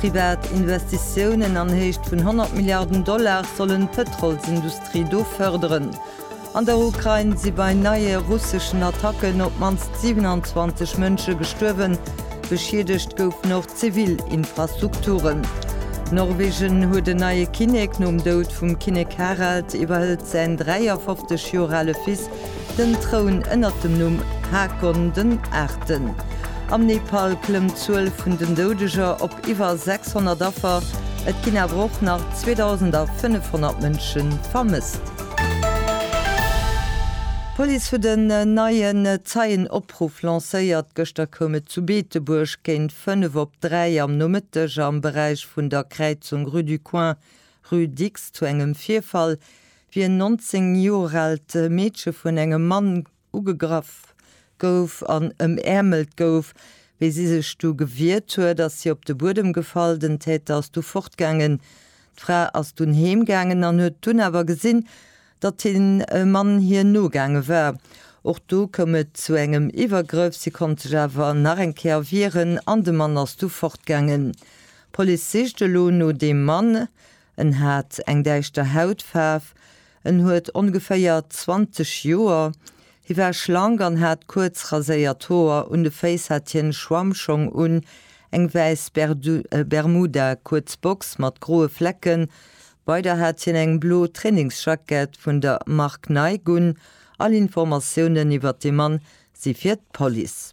Privat Investitiounen an Héicht vun 100 Milliarden Dollar sollen d'Pëtrolsindustrie do fërderen. An der Ukrain si bei neie russeschen Attacken op d'mannst 27 Mënsche gestuerwen. Beschiedegt goufen och zivil Infrastrukturen. Norwegen huet en neie Kinnek. Nom Doud vum Kinnek Harald iwwerhëlt säin 53 Joer ale Fils Den Troun ënnert dem Numm Haakon den Aachten. Am Nepal klëmmt d'Zuel vun den Doudeger op iwwer 600 Affer, et ginn awer och nach 2.500 Mënsche vermësst. D'Police huet en neien Zeienopruff lancéiert. Gëschter koum et zu Beetebuerg géint fënnef op dräi am Nomëtteg am Beräich vun der Kräizung Rue du Coin, Rue Dicks zu engem Virfall. Wéi en 19 Joer aalt Meedche vun engem Mann ugegraff gouf an ëmäermelt gouf, wéi si sech du gewiert huet, ass si op de Buedem gefall. Den Täter ass du fortgaangen. D'Fra ass dunn heem gaangen an huet dunn awer gesinn, datt de Mann hir nogaange war. Och do koum et zu engem Iwwergrëff. Si konnt sech awer nach eng Kéier wieren an de Mann ass du fortgaangen. D'Police sicht elo no deem Mann. En hat eng däischter Hautfaarf, en huet ongeféier 20 Joer, hie war schlank an hat kuerz raséiert Hoer, un de Féiss hat hien e Schwammschong un, eng wäiss Bermuda, kuerz Box mat groe Flecken, weider hat hien eng blo Trainingsjackett vun der Mark Nike un. All Informatiounen iwwer de Mann si fir d'Police.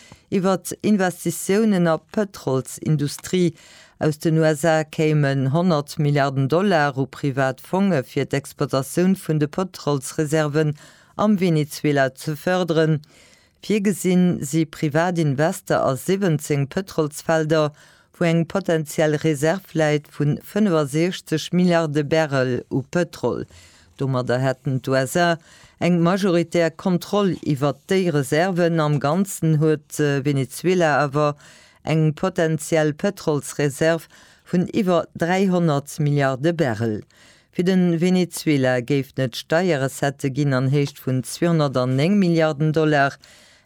Iwwer Investitiounen a Pëtrolsindustrie aus den USA kéimen 100 Milliarden Dollar u privat Fonge fir d'Exploitatioun vun de Pëtrolsreserven am Venezuela ze fërderen. Virgesinn si privat Investe a 17 Pëtrolsfelder, wou eng potentiell Reserv läit vu 65 Milliarde Barrel u Pëtrol. Domadder hätten d'USA eng majoritär Kontroll iwwert déi Reserven. Am Ganzen huet Venezuela awer eng potentiell Pëtrolsreserv vun iwwer 300 Milliarde Barrel. Fir de Venezuela géifen et Steierrecettë ginn an Héicht vun 209 Milliarden Dollar.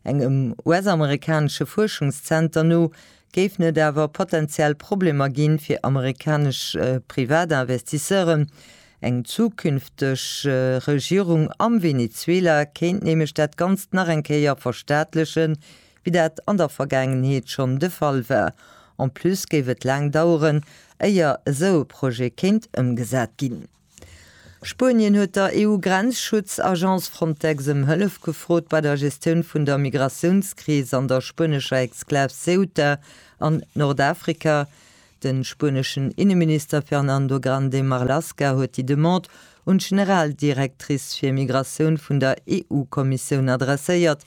Engem US-amerikanesche Fuerschungszenter no Géifen et awer potenziell Problemer ginn, fir amerikanesch Privatinvestisseuren? Eng zukünfteg Regierung am Venezuela kéint nämlech dat Ganzt nach eng Kéier verstaatlechen, wéi dat an der Vergaangenheet schonn de Fall war. En plus géif et laang daueren, éier esou e Projet kéint ëmgesat ginn. Spuenien huet der EU-Grenzschutz-Agence Frontex ëm Hëllef gefrot bei der Gestioun vun der Migratiounskris an der spuenescher Exklav Ceuta an Nordafrika. De spueneschen Inneminister Fernando Grande Marlaska huet déi Demande un d'Generaldirectrice fir Migratioun vun der EU-Kommissioun adresséiert.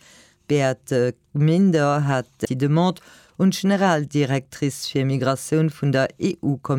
D'Beate Gminder hat déi Demande un d'Generaldirectrice fir Migratioun vun der EU-Kommissioun.